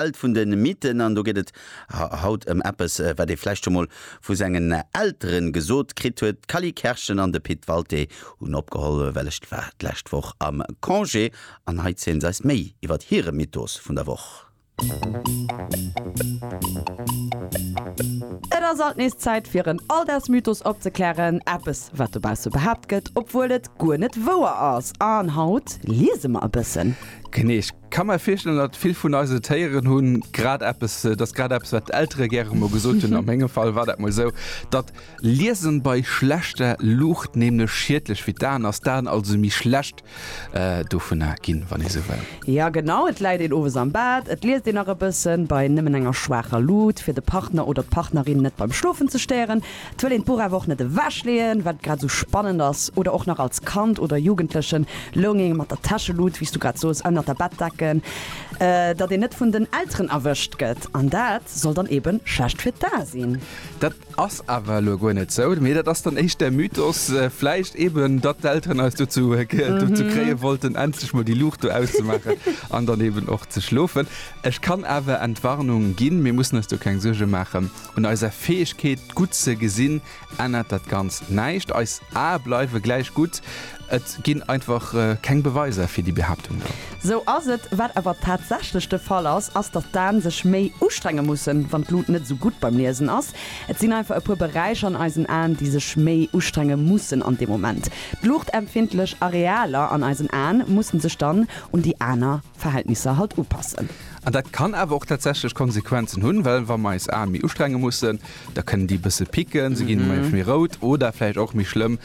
Welt vun de Mythen an do geet et haut ëm eppes, wat ee vläicht scho mol vu sengen Eltere gesot kritt huet. D'Cally Kerschen an de Pit Walté hunn opgeholl, well ech war d'lescht Woch am Congé an hei zielen se eis méi iwwert hire Mythos vun der Woch. Et ass alt nees Zäit fir en Alldagsmythos opzeklären, eppes wat dobausse behaapt gëtt, obwuel et guer net wouer ass an haut liese mer e bëssen. Genee. Kann mer virstellen dat vill vun eise Téieren hunn grad eppes, et ass grad eppes wat d'Eltere gäre mol gesot hunn, a mengem Fall war dat mol esou, datt Liesen bei schlechter Luucht nämlech schiedlech fir d'Aen ass, d'Aen also méi schlecht dovunner ginn, wann ee sou wëll. Jo genau, et läit een owes am Bett, et liest een nach e bëssen bei nëmmen enger schwaacher Luut, fir de Partner oder d'Partnerin net beim Schlofen ze stéieren. Et wëll een d'Buch awer och net ewech leeën, wat et grad esou spannend ass. Oder och nach als Kand oder Jugendlechen loung een mat der Täschelut, wéi s du grad soos, ënnert der Bettdecken, datt een net vun den Elteren erwëscht gëtt. An dat soll dann eebe schlecht fir d'A sinn. Dat ass awer elo guer net sou, mee dat ass dann éischt där Mythos vläicht eeben, datt d'Elteren eis dozou kréie wollten, endlech mol déi Luucht do auszemaachen an dann eeben och ze schlofen. Ech kann awer Entwarnung ginn, mir mussen eis do keng Suerge maachen. Un eiser Fäegkeet gutt ze gesinn ännert dat Ganzt näischt. Eis Ae bleiwe gläich gutt. Et ginn einfach keng Beweiser fir déi Behaaptung do. Sou ass et. Wat awer tatsächlech de Fall ass, ass datt d'Aen sech méi ustrenge mussen, wann d'Lut net esou gutt beim Liesen ass. Et sinn einfach e puer Beräicher an eisen Aen, déi sech méi ustrenge mussen an deem Moment. D'luuchtempfindlech Arealer an eisen Aen musse sech dann un déi aner. Verhältnisser halt upassen. An dat kann awer och tatsächlech Konsequenzen hunn, well wa mer eis Aen méi ustrenge mussen, da kënnen déi e bësse picken, se ginn manchmal méi rout oder vläicht och méi schlëmm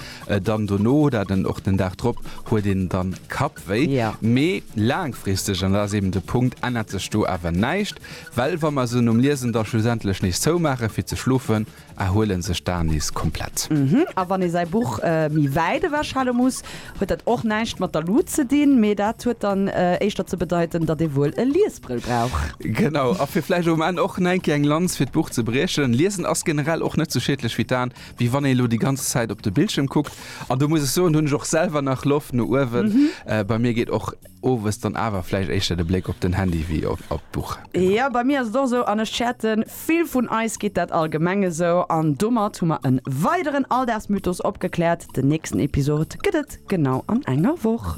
dann dono oder den och den Dag drop huet een dann Kappwéi. Mee laangfristeg, an dat ass eben de Punkt, ännert sech do awer näischt, well wa mer se nom Liesen da schlussendlech nees zoumaachen fir ze schlofen, erhuelen sech d'Aen nees komplett. A wann ee säi Buch méi wäit ewechhale muss, huet dat och näischt mat der Lut ze dinn, mee dat huet dann éischter ze bedeiten, datt ee wuel e Liesbrëll brauch. Genau, a fir vläicht um Enn och nengkéier eng Lanz fir d'Buch ze briechen, Liesen ass generell och net sou schiedlech fir d'Aen, wéi wann ee lo déi ganz Zäit op de Bildschierm kuckt. An do muss ech soen, hunn ech och selwer nach Loft no uewen. Bei mir geet och. Owes dann awer vläicht éischter de Bléck op den Handy wéi op d'Buch. Jo, bei mir ass et och esou, an ech schäerten, vill vun eis geet dat allgemeng esou. An domat hu mer e weideren Alldagsmythos opgekläert. Den nächsten Episode gëtt et genau an enger Woch.